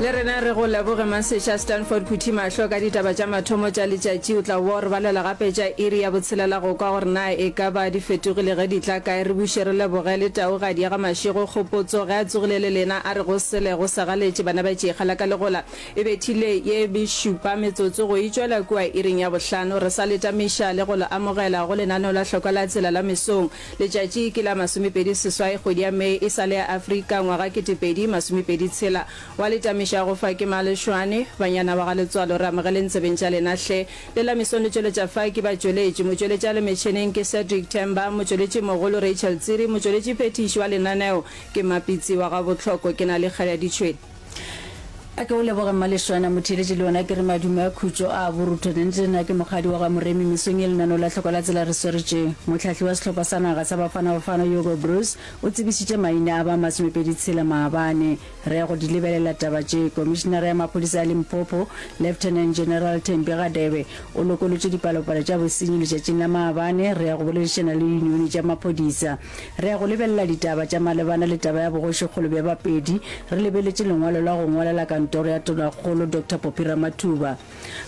le rena re go leboge maseša stanford phuthi mahlo ka ditaba tša mathomo tša letšatši o tla wa re balela gape tša iri ya botshelela go kwa gore na e ka ba di fetogile ge di tla kae re buše re leboge le taugadi ya ga mašego kgopotso ge a tsogile le lena a re go sele go segaletše bana ba tšikgala ka legola e bethile ye bešupa metsotso go itšwela kua iring ya bohlano re sa letamiša le go le amogela go lenaneo la hlokwa la tsela la mesong Letšatši ke la masomepedi seswai kgwedi ya May e sa le ya Afrika ngwaga ketepedi masomepedi tshela. Wa le tamiša go fa ke Malešwane. Banyana ba ga Letswalo re amogeleng tsebeng tša lena hle. Le la mesong le tšweletša fa ke batšweletši. Motšweletši a le metšheneng ke Cedric Temba, motšweletši mogolo Rachel Tsiri, motšweletši phethiši wa lenaneo ke Mapitsi wa ga Bohloko. Ke Nal'ikgale ya ditšhwene. A ke o leboge Mmalešwana, motheeletši le yona ke re madume a khutšo a borutho. Nente na ke mokgadi wa ga Moremi mesong ye lenano la hloko la tsela re sweretše. Mohlahli wa sehlopha sa naga sa Bafana Bafana Hugo Broos o tsebišitše maina a ba masomepedi tshela maabane. Re ya go di lebelela taba tše. Komišinara ya maphodisa a Limpopo, Lieutenant General Thembi Radebe o lokolotše dipalopalo tša bosenyi letšatšing la maabane. Re ya go boledišana le diyunione tša maphodisa. Re ya go lebelela ditaba tša malebana le taba ya bogošikgolo bja Bapedi re lebeletše lengwalo la go ngwalela kantoro ya Tonakgolo Doctor Poppy Ramathuba.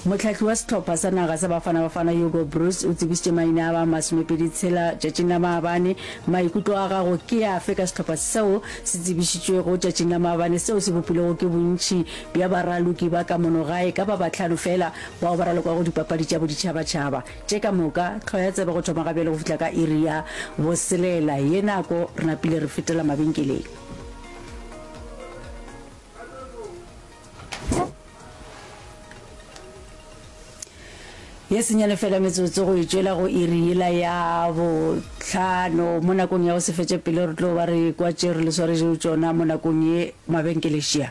Mohlahli wa sehlopha sa naga sa Bafana Bafana Hugo Broos o tsebišitše maina a ba masomepedi tshela tšatšing la maabane. Maikutlo a gago ke afe ka sehlopha seo se tsebišitšwego tšatšing la maabane seo se bopilwego ke bontši bja baraloki ba ka mono gae ka ba bahlano fela bao ba ralokwago dipapadi tša boditšhabatšhaba? Tše ka moka, tlhwa ya tsebe go thoma gabjale go fihla ka iri ya boselela ye nako re napile re fetela mabenkeleng. Ye senyane fela metsotso go e tšwela go iri yela ya botlhano mo nakong ya go se fetše pele re tlo ba re kwa tše re le swaretšego tšona mo nakong ye mabenkelešia.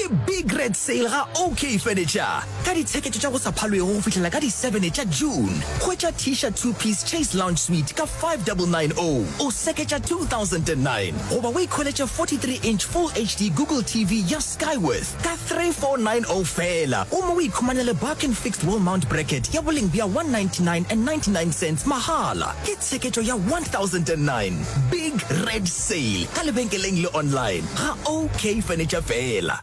Ke big red sale ga OK Furniture ka ditsheketo tša go sa phalwego go fihlela ka di 7 tša June. Hwetša Tisha two piece Chase Lounge Suite ka 5990, o seketša 2009 goba o ikholetše 43 inch Full HD Google TV ya Skyworth ka 3490 feela gomme o ikhumanele Barkin Fixed Wall Mount Bracket ya boleng bja 199 and 99 cents mahala. Ke tsheketšo ya 1009. Big Red Sale ka lebenkeleng le online ga OK Furniture fela.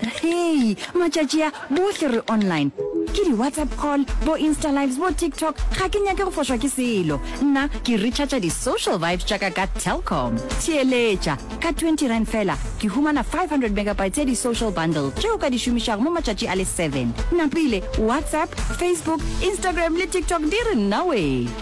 Hei, matšatši a bohle re online. Ke di-WhatsApp call, bo Insta lives, bo TikTok, ga ke nyake go fošwa ke selo. Nna ke recharger di-social vibes tša ka ka Telkom. Theeletša, ka twenty rand fela ke humana five hundred megabytes ya di-social bundle tše o ka di šomišago mo matšatši a le seven. Napile WhatsApp, Facebook, Instagram le TikTok di re nnawee.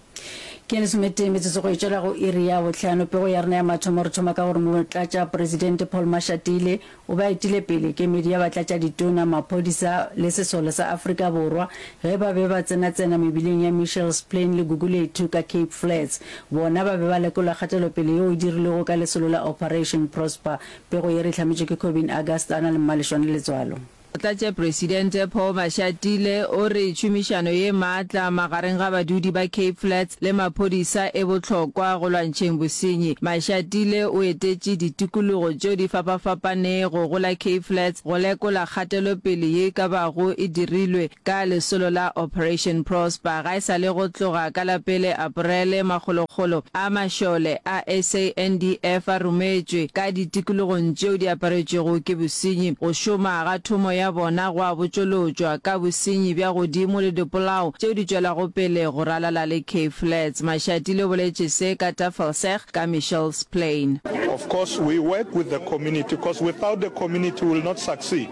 Ke ya lesometee metsotso go e tšwela go iri ya bohlano. Pego ya rena ya mathomo re thoma ka gore Motlatšaporesidente Paul Mashatile o be a etile pele kemedi ya Batlatšaditona, Maphodisa le Sesole sa Afrika Borwa ge ba be ba tsenatsena mebileng ya Mitchell's Plain le Gugulethu ka Cape Flats. Bona ba be ba lekola kgatelopele yeo e dirilwego ka lesolo la Operation Prosper, pego ye re e hlametšwe ke Kobin Augusta a na le Mmaleshwane Letswalo. Motlatšepresidente Paul Mashatile o re tšhomišano ye maatla magareng ga badudi ba Cape Flats le maphodisa e bohlokwa go lwantšheng bosenyi. Mashatile o etetše ditikologo tšeo di fapafapanego go la Cape Flats go lekola kgatelopele ye e ka bago e dirilwe. Ka lesolo la Operation Prosper, ga e sa le go tloga ka la pele Aparele, makgolokgolo a mašole a SANDF a rometšwe ka ditikologong tšeo di aparetšwego ke bosenyi. Go šoma ga thomo ya bona go a botšolotšwa ka bosenyi bja godimo le dipolao tšeo di tšwelago pele go ralala le Cape Flats. Mashatile o boletše se ka Tafelsig ka Michelle's Plain. Of course we work with the community cos without the community we will not succeed.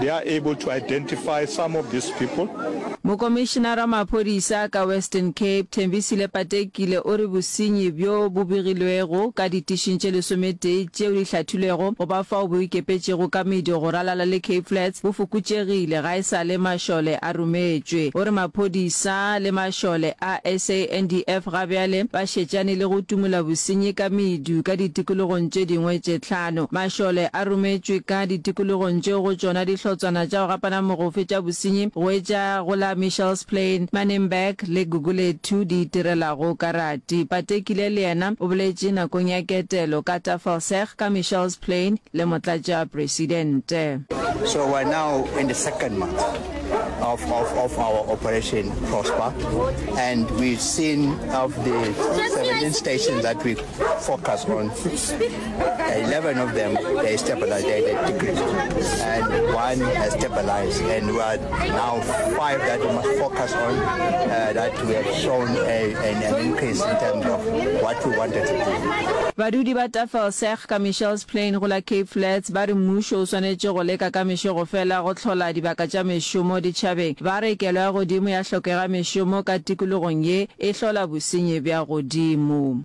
They are able to identify some of these people. Mokomišenara wa maphodisa ka Western Cape, Thembisile Patekile o re bosenyi bjo bo begilwego ka ditišing tše lesometee tšeo di hlathilwego go ba fao bo ikepetšego ka medu go ralala le Cape Flats bo fokotšegile ga e sa le mašole a rometšwe. O re maphodisa le mašole a SANDF ga bjale ba šetšane le go tumola bosenyi ka medu ka ditikologong tše dingwe tše Ano, mašole a rometšwe ka ditikologong tšeo go tšona dihlotswana tša go gapana mogofe tša bosenyi go etša go la Michelsplain, Manenberg le Gugulethu di itirelago karati. Patekile le yena o boletše nakong ya ketelo ka Tafelsig ka Michelsplain le Motlatšapresidente. So we're now in the second month of, of, of our Operation Prosper, and we've seen of the 17 stations that we focus on, 11 of them, they stabilized, they, they decreased. And one has stabilized. And we are now five that we must focus on uh, that we have shown a, an, an increase in terms of what we wanted to do. badudi ba tafelseg ka michels plain go la cape flats ba re mmušo o swanetše go leka ka mešogo fela go hlola dibaka tša mešomo ditšhabeng ba re kelo ya godimo ya hlokega mešomo ka tikologong ye e hlola bosenyi bja godimo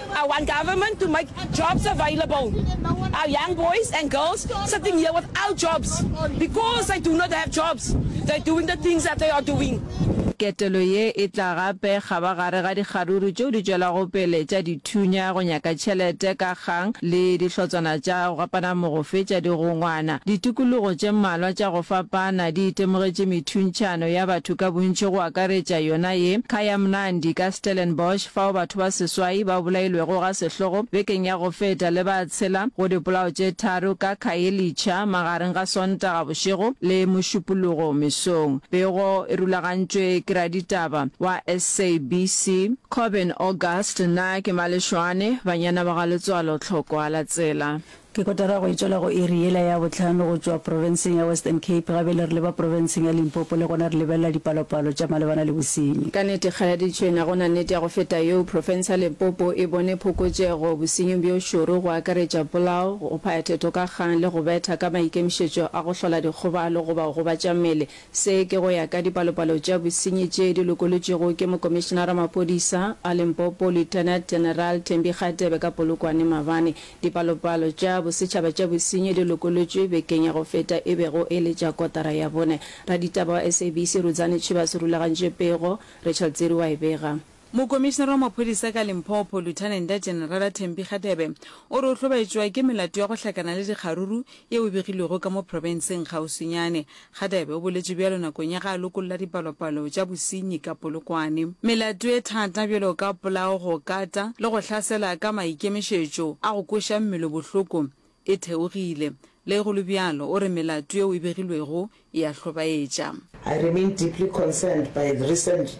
I want government to make jobs available our young boys and girls sitting here without jobs because they do not have jobs they doing the things that they are doing. Ketelo ye e tla gape kgaba gare ga dikgaruru tšeo di tšwelago pele tša dithunya go nyaka tšhelete ka kgang le dihlotswana tša go gapana mogofe tša digongwana. Ditikologo tše mmalwa tša go fapana di itemogetše methuntšhano ya batho ka bontši go akaretša yona ye Kayamnandi ka Stellenbosch, fao batho ba seswai ba bolailwego ga sehlogo bekeng ya go feta le ba tshela go dipolao tše tharo ka Khayelitsha magareng ga Sontaga bošego le Mošupologo mesong. Pego e rulagantšwe ke raditaba wa SABC Corbyn August. Nna ke Malešwane, banyana ba ga letswalo tlhokwa la tsela. Ke kotara go e tšwela go iri yela ya bohlano go tšwa profenseng ya Western Cape, ga bjale re leba profenseng ya Limpopo le gona re lebelela dipalopalo tša malebana le bosenyi. Ka nete kgaladitšhwena go na nnete ya go feta yeo, profense ya Limpopo e bone phokotšego bosenying bjo šoro go akaretša polao, go phaya theto ka kgang le go betha ka maikemišetšo a go hlola dikgobalo goba go gobatša mmele. Se ke go ya ka dipalopalo tša bosenyi tše di lokolotšwego ke Mokomišenara wa Maphodisa a Limpopo Lieutenant General Thembi Kgatebe ka Polokwane maabane. Dipalopalo tša bosetšhaba tša bosenyi di lokolotšwe bekeng ya go feta e bego e le tša kotara ya bone. Raditaba wa SABC Rudzani Chivas o rulagantše pego, Rachel Tsiri wa e bega. Mokomišinara wa maphodisa ka Limpopo, Luthanenda Jenerala Thembi Kgadebe, o re o hlobaetšwa ke melato ya go hlakana le dikgaruru yeo e begilwego ka mo profenseng kgauswinyane Radebe o boletše bjalo nakong ya ge a lokolla dipalopalo tša bosenyi ka Polokwane. Melato e thata bjalo ka polao, go kata le go hlasela ka maikemišetšo a go kweša mmele bohloko e theogile. Le go le bjalo, o re melato yeo e begilwego e a hlobaetša. I remain deeply concerned by recent